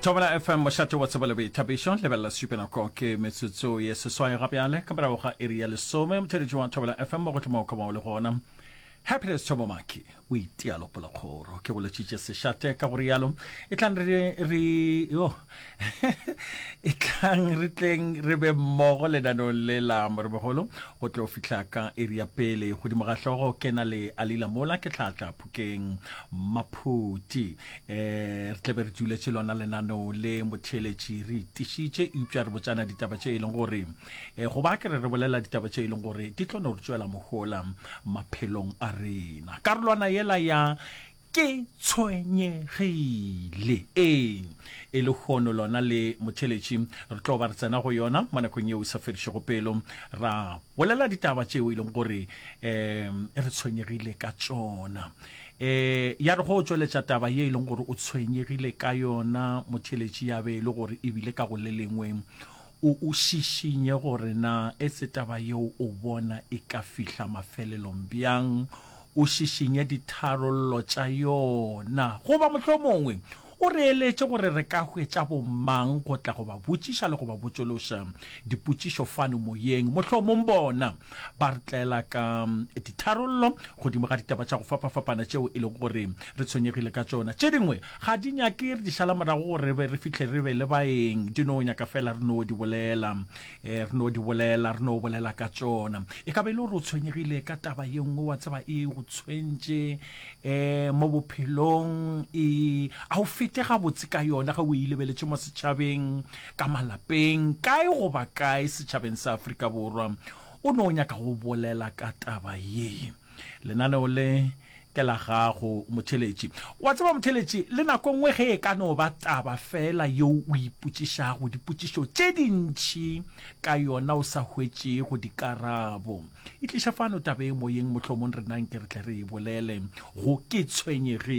thobela fm mošate wa tsebo le boithabišo lebelela sepenako ke metsotso ye seswai ga bjale ka morago ga iri ya lesome motheletši wa thobela fm mo go thoma o koma o le gona happiness thobo maki o itealopolokgoro ke boletšitše sešate ka go rialo e tlang re yo e tlang re tleng re be mmogo lenanong le la moremogolo go tlo fitlha ka iri ya pele godimo ga hlogo ke na le alila mola ke tlhatla phukeng maphuti um re tlebe re tsuletše lona lenanong le motheletši re itišitše eupša re botsana ditaba tše e leng gore um eh, go ba ke re re bolela ditaba tše e leng gore di tlo no re tswela mohola maphelong a rena karolwana yela ya Ke tshwenyegile. Ee, e lehono lona le motheletši. Re tlo ba re tsena go yona mo nakong yeo e sa fedišego pelo, ra bolela ditaba tšeo e leng gore um re tshwenyegile ka tšona. Um ya re go tšweletša taba ye e leng gore o tshwenyegile ka yona, motheletši, ya be e le gore ebile ka go le lengwe O o šišinye gore na e se taba yeo o bona e ka fihla mafelelong bjang, o šišinye ditharollo tša yona. Goba mohlomongwe o re eletše gore re ka hwetša bomang go tla go ba botšiša le go ba botšološa dipotšišo fano moyeng. Mohlomong bona ba re tlela ka ditharollo godimo ga ditaba tša go fapafapana tšeo e lego gore re tshwenyegile ka tšona. Tše dingwe Ga di nyake re di šala morago gore re be re fihle re be le baeng, di no nyaka feela re no di bolela. Ee, re no di bolela, re no bolela ka tšona. E ka ba e le gore o tshwenyegile ka taba ye nngwe, wa tseba, e go tshwentše um mo bophelong, e, a o fete gabotse ka yona ge o e lebeletše mo setšhabeng, ka malapeng, kae goba kae setšhabeng sa Afrika Borwa. O no nyaka go bolela ka taba ye. Lenaneo le ke la gago motheletši. Wa tseba motheletši, le nako nngwe ge e ka no ba taba fela yeo o ipotšišago dipotšišo tše dintši ka yona o sa hwetšego dikarabo, e tliša fano taba e moyeng, mohlomong rena nke re tle re e bolele go Ke tshwenyegile.